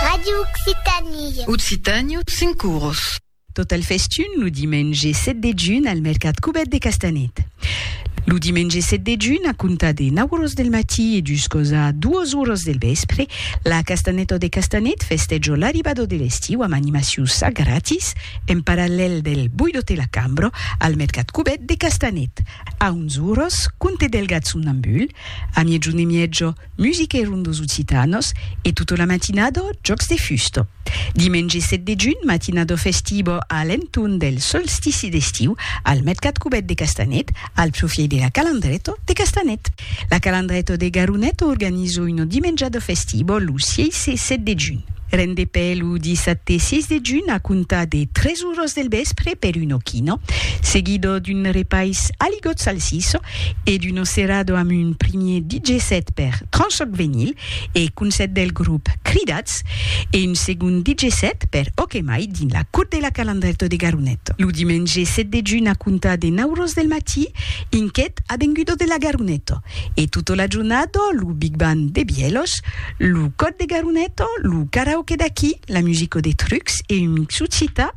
Ràdio Occitània. Occitània, cinc oros. Tot al festun lo dimenge 7 de junh al mercat Cubèt de Castanet. Lo dimenge 7 de junh, a comptar de 9 oros del matí e juscos a 2 oros del vèspre, la Castanèta de Castanet festèjo l'arribada de l'estiu amb animacions a gratis en parallèl del Buido te la cambro al mercat Cubèt de Castanet. A 11 oros, conte Delgat somnambul, a miègjun e miègio, Musiquèron dos occitanos e tota la matinada jòcs de fusta. Dimenge 7 de junh, matinada festiva a l'entorn del solstici d'estiu al mercat cubèt de Castanet, al profièit de la Calandreta de Castanet. La Calandreta de Garoneta organiza una dimenjada festiva lo 6 e 7 de junh. Rendepè lo dissabte 6 de junh a comptar de 3 oras del vèspre per una quina, seguida d'un repais a ligotz salsissa, e d'Uno Cerrado amb un primier DJ set per Tranchoc Venyl e Concèrt del grop Cridats e un segond DJ set per Ok Mai dins la Cour de la Calandrèto de Garonet lo dimenge 7 de junh a comptar de 9 ros del matí in quet avengudo de la Garoneto e tota la jornada lo Big Band de Bièlhos, lo Còr de Garoneto, lo Karaoke d'aquí, la Musico de Trucs e un mixu cita.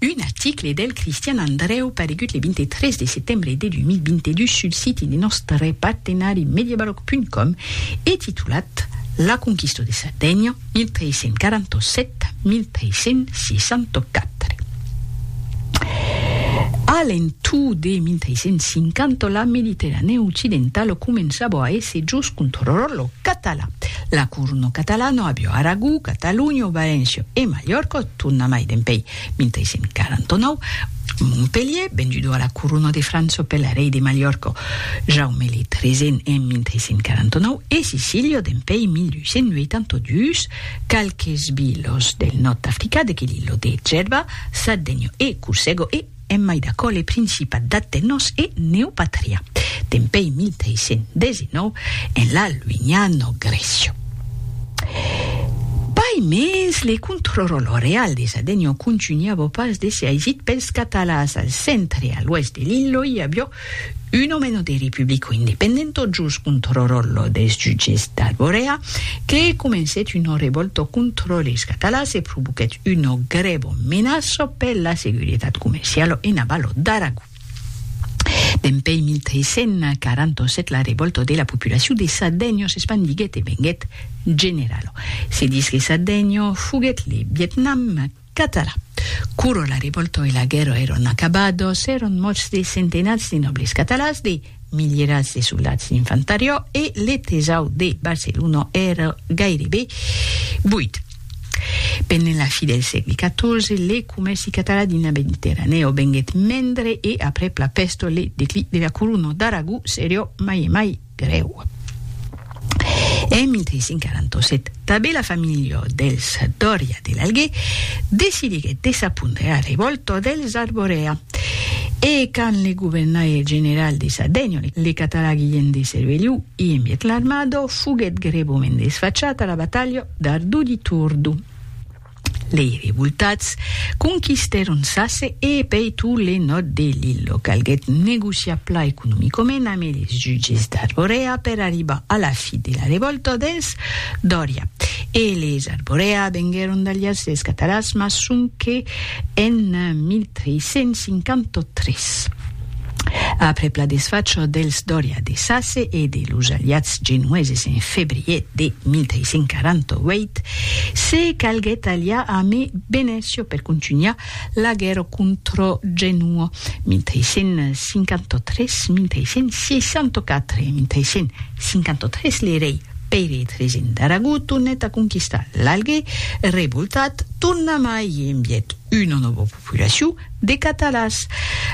Un article del Cristian Andrèu paregut le 23 de setembre de 2022 sul siti de nòstre partenari mediabaroc.com e titulat La conquista de Sardenha, 1347-1364. A l'entorn de 1350, la Mediterranèa occidentala començava a èsser jos contròla catalan. La corona catalana aviá Aragó, Catalonha, Valéncia e Malhòrca, Torna mai dempèi 1149, Montpelhier, vendudo a la Corona de França per l'arrei de Malhòrca Jaume le Tresent en 1149 e Sicília dempèi 1282, qualques vilas del nòrd d'Africa de que l'illo de Gerba, Sardegna e Corsego e. En mai d'aquò le Principat d'Atenos e Neopatria, dempèi 1319, en la luignano Grècia. Pas mens le contròrol roreal de Sadenio contunhavo pas de se aisit pels catalans. Al centre e a l'oèst de l'illo i avió Un òmeno de Republico Independento jos contrò ròllo des jutges d'Arborea que comencèt una revòlta contrò les Catalans e provoquèt una grèva menaça per la seguretat comerciala ena Valò d'Aragó. Dempèi 1347 la revòlta de la populacion de Sardenha s'espandiguèt e venguèt generala. Se ditz que Sardenha foguèt le Vietnam Catalan. Quoro la rivolto e la guèrra èron acabados, èron mòrts de centenats de nòbles catalans, de milierats de soldats d'infantariò e le tesaur de Barcelona èra gairebe buit. Pendent la fi del sègle XIV, le comèrci catalan dins la Mediterranèo venguèt mendre e aprèp la pèsto le declic de la Corona d'Aragó serió mai e mai grèu. En 1547, tanben la familha dels Doria de l'Alguer decidiguèt de s'apondre a revòlta dels Arborea e quand le governaire general de Sardenha, le catalan Guilhèm de Cerveliu i envièt l'armada, foguèt grèvament desfachat a la batalha d'Ardu di Turdu. Lei revoltats conquistèron Sasse e pei tot le nòrd de l'Illo. Calguèt negociar plan economicament amb eles jutges d'Arborea per arribar a la fi de la revòlta dels Doria. Eles Arborea venguèron d'aliats dels Cataràs mas sonque en 1353. Après la desfacha dels Doria de Sace e de los aliats genoeses en febrier de 1548, se calguèt aliar amé Venecio per contunhar la guèrra contra Genua, 1553, 1564 e 1553 le rei Pere XIII d'Aragó tornèt a conquistar l'Alguer, revoltat, tornamai envièt una nòva populacion, de catalans,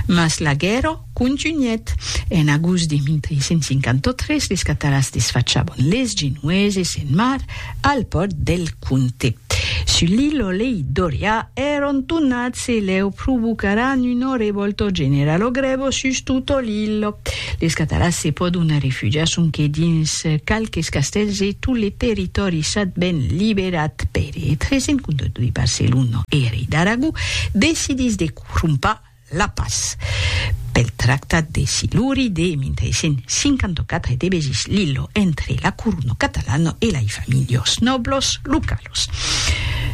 mas la guèrra contunhèt. En agost de 1353 les catalans desfachabon les genoeses en mar al pòrt del Conte. Sully lo lei Dorià èron tonats e leu provocaràn una revòlta generala grèva sus tota l'illa. Les catalans se pòdon arrefugiar sonque dins qualques castèls e tot le territòri sat ben liberat pere 352 Barcelona e rei d'Aragó decidís de crompar la pas pel tractat de Siluri de 1354 e de besís l'illo entre la corona catalana e lai familhos nòblos localos.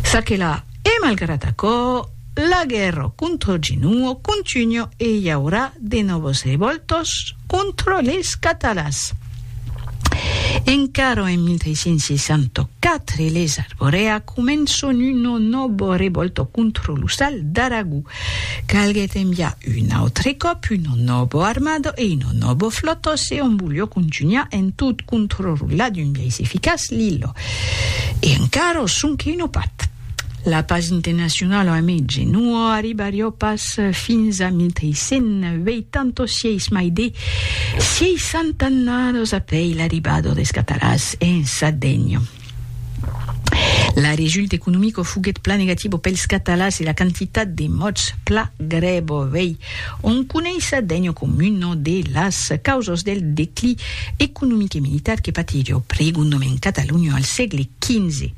Ça que la, e malgrat aquò, La guerra contra Ginuo contunha e i aurà de nòvas revòltas contra les catalans. Encara en 1364 les Arborea començan una nòva revòlta contra lo sal d'Aragó. Calguèt enviar un autre còp una nòva armada e una nòva flòta se òm voliá contunhar en tot contrarolar d'un biais eficaç l'illa. E encara sonque una part. La pas internacionala a mètge non o arribarió pas fins a 1386 mai de 60 annados apèi l'arribado des catarats en Sardènha. La result economico foguèt plan negativo pels catalans e la quantitat de mòts pla grèvo vei On coneissa degno communo de las causas del declí economic e militar que patí lo pregon domen Cataluña al sègle XV,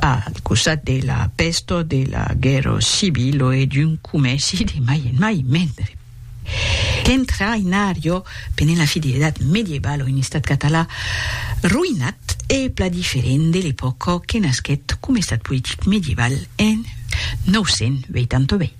al costat de la pèsta, de la guèrra civila e d'un comèrci de mai en mai mendre. Qu'entraïnarió pendent la fin de l'Edat Medievala un estat català roïnat e pla diferent de l'epòca que nasquèt coma estat politic medieval en 988.